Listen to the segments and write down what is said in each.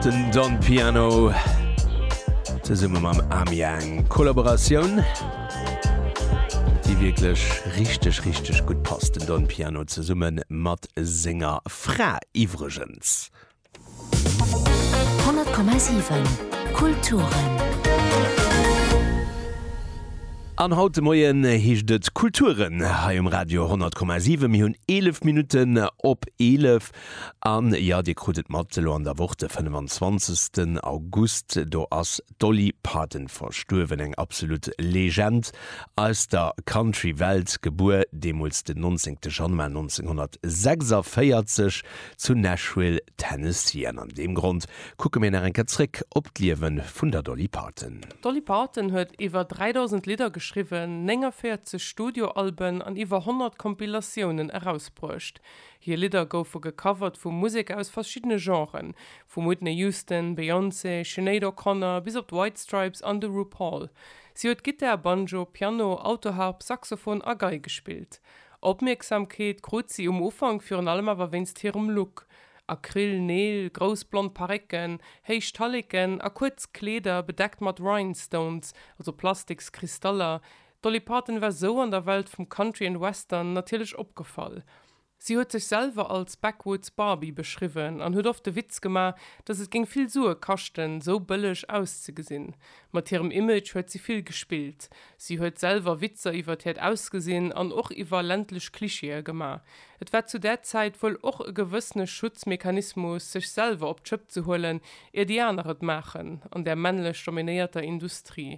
Den Don Piano ze summe mam Amiang Kollaboratioun Di wieklech richteg richteg gutt passt den Don Piano ze summe mat senger Fra iwwregens. 100,7 Kulturen. An haut de Moien heescht et Kulturen hei um Radio 100,7. Mir hunn 11 Minutten op 11. An jo, dir krut et mat, elo an der Woch de 25 August, do ass d'Dolly Parton verstuerwen, eng absolut Legend aus der Country Welt, gebuer deemools den 19 Januar 1946 zu Nashville, Tennessee. An an deem Grond kucke mir nach eng Kéier zréck op d'Liewe vun der Dolly Parton. D'Dolly Parton huet iwwer 3.000 Lidder geschriwwen, 49 Studioalben an iwwer 100 Compilatiounen erausbruecht. Hir Lidder goufe gecovert vu Museker aus verschiddene Genren, vum Whitney Houston, Beyoncé, Sinéad O'Connor bis op d'White Stripes an de RuPaul. Si huet Gittar, Banjo, Piano, Autoharp, Saxophon a Gei gespillt. Opmierksamkeet krut si um Ufank virun allem awer wéinst hirem Look, Acryl Neel, grouss blond Parécken, héich Talleken a kuerz Kleeder bedeckt mat Rhinestones, also Plastiks-Kristaller, D'Dolly Parton war sou an der Welt vum Country an Western natierlech opgefall. Si huet sech selwer als Backwoods Barbie beschriwwen an huet oft de Witz gemaach, dass et géing vill Sue kaschten, sou bëlleg auszegesinn. Mat hirem Image huet si vill gespillt. Si huet selwer Witzer iwwert hiert Ausgesinn an och iwwer ländlech Klischeeë gemaach. Et war zu där Zäit wuel och e gewëssene Schutzmechanismus, sech selwer op d'Schëpp ze huelen, ier déi aner et maachen, an där männlech dominéierter Industrie.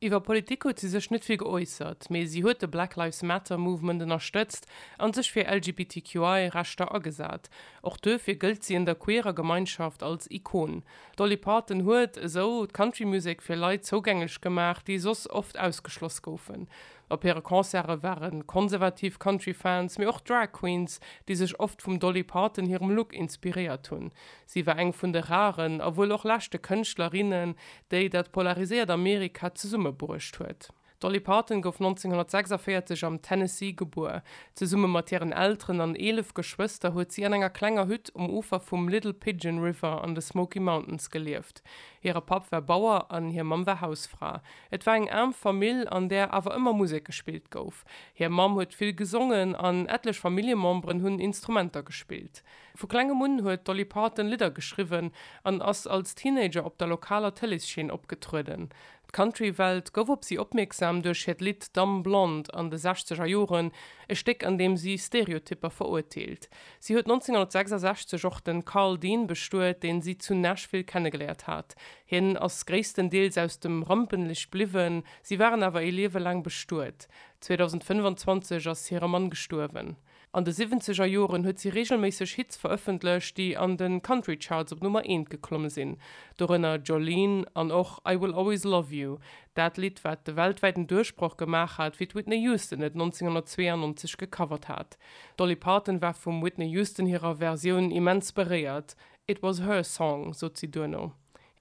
Iwwer Politik huet si sech net vill geäussert, mee si huet de Black Lives Matter Movement ënnerstëtzt an sech fir LGBTQI Rechter agesat. Och duerfir gëllt si an der queerer Gemeinschaft als Ikon. D'Dolly Parton huet esou d'Country Music fir Leit zougänglech gemaach, déi soss oft ausgeschloss goufen. Op hire Concerte ware konservativ Country Fans, mee och Drag Queens, déi sech oft vum Dolly Parton hirem Look inspiréiert hunn. Si war eng vun de raren, a wuel och leschte Kënschtlerinnen, déi dat polariséiert Amerika zesummebruecht huet. D'Dolly Parton gouf 1946 am Tennessee gebuer. Zesumme mat hiren Elteren an eelef Geschwëster huet si an enger klenger Hütt um Ufer vum Little Pigeon River an de Smoky Mountains gelieft. Hire Papp war Bauer an hir Mamm war Hausfra. Et war eng aarm Famill, an där awer ëmmer Musek gespillt gouf. Hir Mamm huet vill gesongen an ettlech Familljememberen hunn Instrumenter gespillt. Vu klengem un huet d'Dolly Parton Lidder geschriwwen an ass als Teenager op der lokaler Tëleesscheen opgetrueden. D'Country-Welt gouf op si opmierksam duerch hiert Lidd Dumb Blonde an de sechzeger Joren, e Stéck an deem si Stereotypper verurteelt. Si huet 1966 och de Karl Dean bestuet, deen si zu Nashville kennegeléiert hat. Hien ass gréisstendeels aus dem Rampenlicht bliwwen, si waren awer ee Liewe laang bestuet. 2025 ass hire Mann gestuerwen. An de siwwenzeger Joren huet si reegelméisseg Hits verëffentlecht, déi an de Country Charts op Nummer eent geklomme sinn, dorënner Jolene an och I Will Always Love You, dat Lidd, wat de weltwäiten Duerchbroch gemaach hat, wéi d'Whitney Houston et 1992 gecovert hat. D'Dolly Parton war vum Whitney Houston hirer Versioun immens beréiert, It was her song, sot si duerno.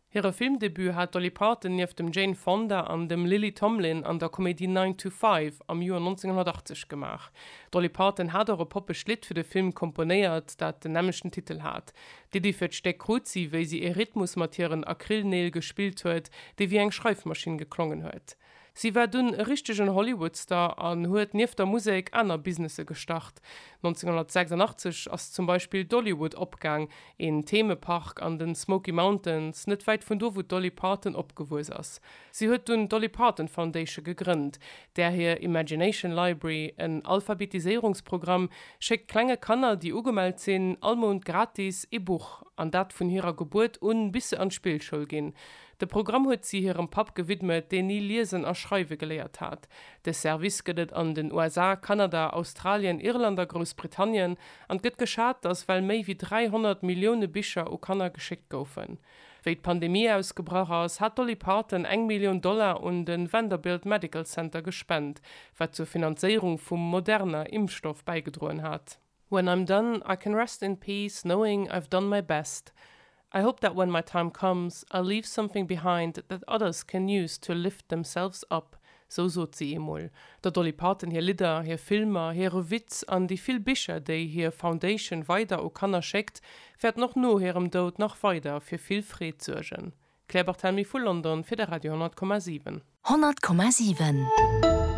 Hire Filmdebut hat d'Dolly Parton nieft dem Jane Fonda an dem Lily Tomlin an der Komedie Nine to Five am Joer 1980 gemaach. D'Dolly Parton hat och e poppegt Lidd fir de Film komponéiert, dat den nämmlechten Titel hat. D'Iddi fir d'Stéck krut si, wéi si ee Rhythmus mat hiren Acrylneel gespillt huet, dee wéi eng Schreifmaschinn geklongen huet. Si war dunn e richtegen Hollywood-Star an huet nieft der Musek aner Businesse gestart. 1986 ass zum Beispill Dollywood opgaang, een Themepark an den Smoky Mountains, net wäit vun do wou d'Dolly Parton opgewuess ass. Si huet dunn d'Dolly Parton Foundation gegrënnt, där hir Imagination Library, en Alphabetiséierungsprogramm, schéckt klenge Kanner, déi ugemellt sinn, all Mount gratis ee Buch, an dat vun hirer Gebuert un bis se an d'Spillschoul ginn. De Programm huet si hirem Papp gewidmet, deen ni liesen a schreiwe geléiert hat. De Service gëtt et an den USA, Kanada, Australien, Irland a Groussbritannien, an et gëtt geschat, datt well méi wéi 300 Millioune Bicher u Kanner geschéckt goufen. Wéi d'Pandemie ausgebrach ass, hat d'Dolly Parton eng Millioun Dollar un de Vanderbilt Medical Center gespent, wat zur Finanzéierung vum Moderna-Impfstoff bäigedroen hat. When I'm done, I can rest in peace knowing I've done my best. I hope that when my time comes, I'll leave something behind that others can use to lift themselves up, sou sot si eemol. Der Dolly Parton hir Lidder, hir Filmer, hire Witz an déi vill Bicher, déi hir Foundation weider u Kanner schéckt, wäerten och no hirem Doud nach weider fir vill Freed suergen. Claire Barthelmy vu London fir de Radio 10,7. 10,7.